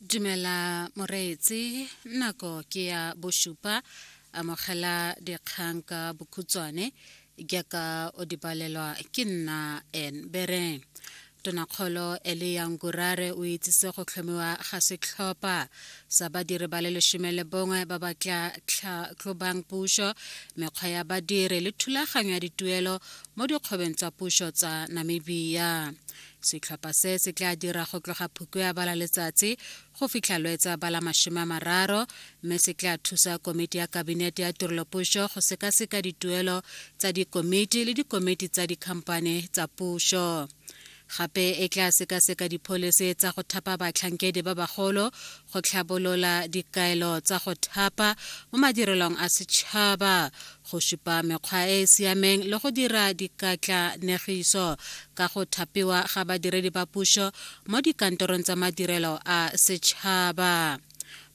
dumela moreetsi nako ke ya bosupa amogela dikgang ka bokhutswane jaaka o di balelwa ke nna en bereng tonakgolo ele yang gurare o itsise go tlhomiwa ga setlhopha sa badiri ba le lesome le bongwe ba ba tla tlhatlhobang puso mekgwa ya badiri le thulaganyo ya dituelo mo dikgwebeng tsa puso tsa namibia setlhopha se se tla dira go tloga phuko ya bala letsatsi go fitlha lwetsa bala masome a mararo mme se tla thusa komiti ya kabinete ya tirelopuso go sekaseka dituelo tsa dikomiti le dikomiti tsa dikhamphane tsa puso gape e tla sekaseka dipholisi tsa go thapa batlhankedi ba bagolo go tlhabolola dikaelo tsa go thapa mo madirelong a setšhaba go supa mekgwa e e siameng le go dira dikatlanegiso ka go thapiwa ga badiredi ba puso mo dikantorong tsa madirelo a setšhaba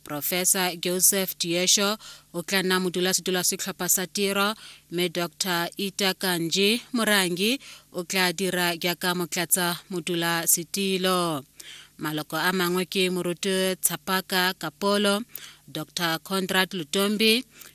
profesa joseph diesho o tla nna modulasetilo wa setlhopha sa tiro mme dr ita kanji morangi o tla dira jaaka motlatsa modulasetilo maloko a mangwe ke moruti tshapaka kapolo dr conrad lutombi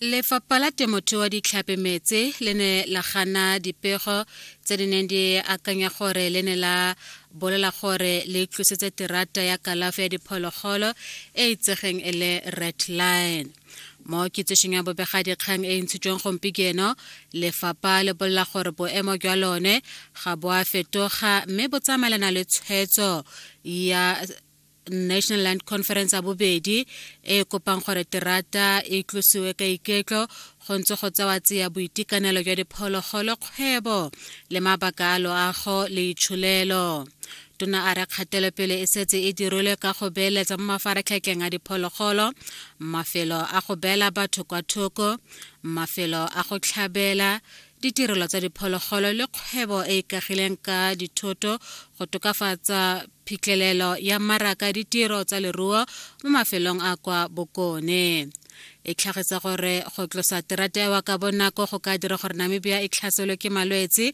Lefapha la Temothuo Ditlhapi Metse le ne la gana dipego tse di neng di akanya gore le ne la bolela gore le tlositse terata ya kalafi ya diphologolo e itsegeng e le Red Line. Mo kitsišong ya bobegadikgang e e ntshitsweng gompieno, lefapha le bolela gore boemo jwa lone ga bo a fetoga mme bo tsamaelana le tshwetso ya national land conference ya bobedi e kopang gore terata e tlosiwe ka iketlo go ntse go tsewa tseya boitekanelo jwa diphologolo kgwebo le mabaka a loago le itsholelo tona a re kgatelopele e setse e dirilwe ka go beeletsa mo mafaratlhatlheng a diphologolo mafelo a go beela batho kwa thoko mafelo a go tlhabela ditirelo tsa diphologolo le kgwebo e e kagileng ka dithoto go tokafatsa phitlhelelo ya mmaraka ditiro tsa leruo mo mafelong a kwa bokone e tlhagisa gore go tlosa terata ewa ka bonako go ka dira gore namibia e tlhaselwe ke malwetse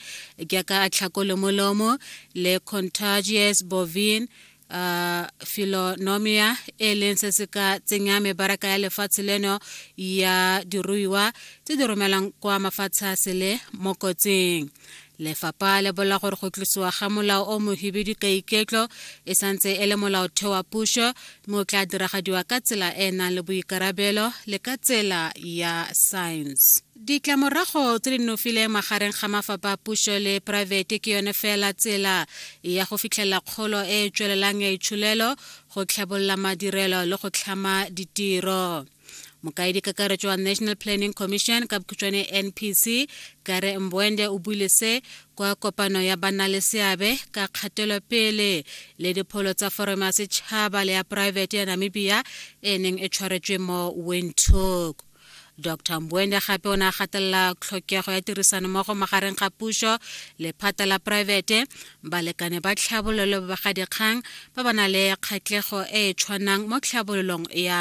jaaka a tlhako le molomo le contagious bovine uh, filonomia e leng se se ka tsenya mebaraka ya lefatshe leno ya diruiwa tse di romelang kwa mafatshe a sele mo kotsing lefapha le bola gore go tlosiwa ga molao o mohibidu ka iketlo e santse e le molaotheo wa puso mme o tla diragadiwa ka tsela e e nang le boikarabelo le ka tsela ya science Ditlamorago tse di nofile magareng ga mafapha a puso le poraefete ke yone fela tsela ya go fitlhelela kgolo e e tswelelang ya itsholelo, go tlhabolola madirelo le go tlhama ditiro. Mokaedi kakaretso wa National Planning Commission ka bokhutshwane NPC, Gary Mbwende o buile se kwa kopano ya banna le seabe ka kgatelopele le dipholo tsa forome ya setšhaba le ya poraefete ya Namibia e neng e tshwaretswe mo Windhoek. dr mbuende gape o ne a gatelela tlhokego ya tirisanommogo magareng ga puso le phata la poraefete balekane ba tlhabololo ba bagadikgang ba ba na le kgatlhego e e tshwanang mo tlhabololong ya